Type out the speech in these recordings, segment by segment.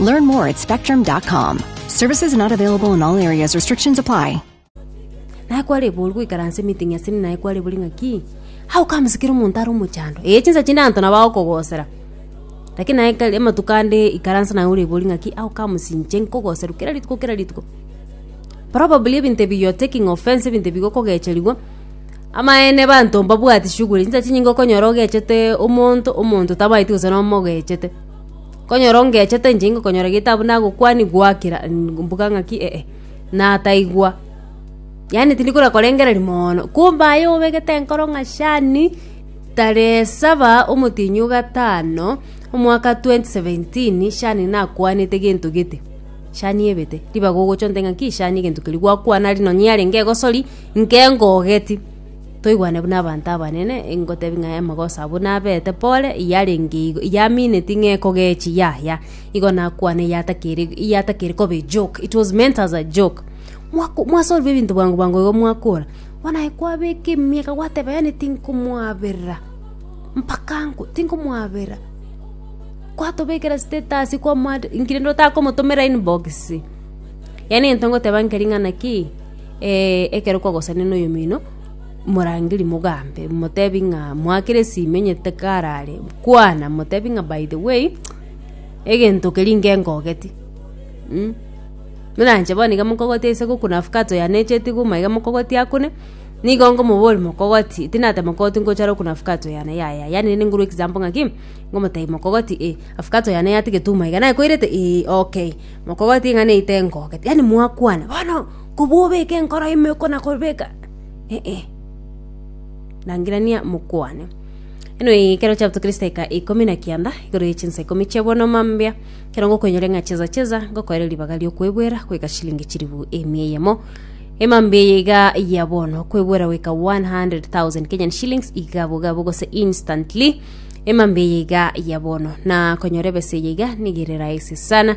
Learn more at spectrum.com. Services not available in all areas. Restrictions apply. naye kware boru goikaransa emeeting ase naye kware bori ng'aki how comes kera omonto are omochando ee chinsa chinde anto nabo agokogosera lakini naye kare amatuko ande ikaransa naye ore bori ng'aki how comes inche nkogoserwa kera rituko kera rituko probably ebinto ebi you're taking offense ebinto ebi gokogecherigwa amaene abanto mbabwati shughuli chinsa chinyinge okonyora ogechete omonto omonto tamaeti gose nomogechete Konyora ongechete inche ngokonyora getabu nagokwani gwaakera mbuga ng'aki eh nataigwa. Yaani tindi kora korengereria moono, kumbe aye obegete enkoro ng'a shani, tarehe saba omotienyi o gatano, omwaka twenty seventeen, shani nakwanete gento gete, shani ebete. Ribaga ogocha ontebia ng'aki shani egento keria gwakwana ari nonye yarenge egosori, nkengogeti. Toigwane buna abanto abanene, ngotebi ng'a amagoso abwo nabeete pore, yarenge igo, yamineti ng'a ekogechi, yaya. Igo nakwane eyatakeri, eyatakeri koba ejoke, it was meant as a joke. Mwako mwasorwa ebinto bwango bwango igo mwakora, bono aye kwabeka emiaka gwateba yaani tinkomoaberera, mpaka nkwe, tinkomoaberera. Kwatobekera status kwamwad, inki rende otakomotomera inbox? Yaani egento ngoteba nkeri ng'a naki. Ekero kwagosania noyomino, morangeri mogambe, motebi ng'a mwakera esimi onye takarare, kwana motebi ng'a by the way, egento keria inke ngogeti, mm. Buna inche bono iga mokogote ase goku na avocado yane echeti iga omaiga mokogote akune, nigo ngomoboria mokogotie, tinateba mokogotie ngocha are oku na avocado yane, yaya, yaani rende ngorwe example ng'a ki, ngomotebi mokogotie eh, avocado yane yatigete omaiga, naye koirete? Eeh okay, mokogotie ng'a neite ngogete, yaani mwakwana bono. Kobua obeke enkoro ime okona kobeka, eh-e, rangirania mokwane. Eno eye ekero chapto Kristo eka ikomi na kianda igoro ye chinsa ikomi chia bono mambia kero ngokoinyore ng'a cheza cheza ngokoere ribaga riokwebwera kweka shilingi chiribu emia eyemo emambia eye iga ya bono kwebwera weka 100,000 Kenyan shillings iga bogabo gose instantly emambia eye iga ya bono na konyora ebesa eye iga nigerera ese sana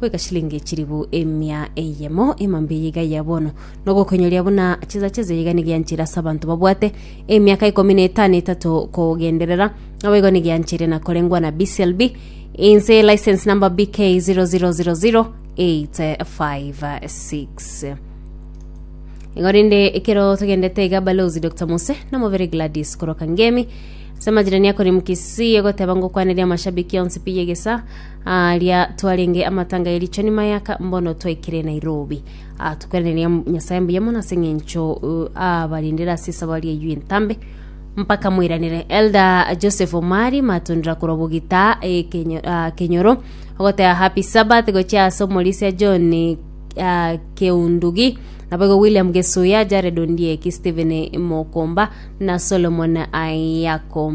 goika chilingi echiribu emia eyemo ema mbiya iga ya bono, na ogokoinyoria buna chisacha ezo iga nigianchire ase abanto babwate emiaka ikomi na etano etato kogenderera, abo igo nigianchire na korengwa na BCLB inse license number BK 0000856. Igo rende ekero togendete iga balozi Dr. Mose na mobere Gladys koroka ngemi ase amajirani akoremu Kisii ogoteba ngokwaneria amashabiki onsi pi yegesa Aaria twarenge amatanga ye richoni mayaka mbono twaikire Nairobi. Ah, tokwereneria Nyasaye mbuya mono ase eng'encho uh, abarindire ase esabari eyio entambe mpaka moiranire elda joseph omari matundira korwa bogita eh, Kenyo- ah, kenyoro ogotera happy sabbath gochia ase omorisia john ah, keundugi naboigo william gesuya jared ondieki stephen mokomba na solomon ayako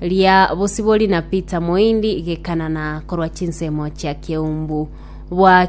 Ria bosibori na Peter Moindi gekanana korwa chinsemo chia keumbu. Bwa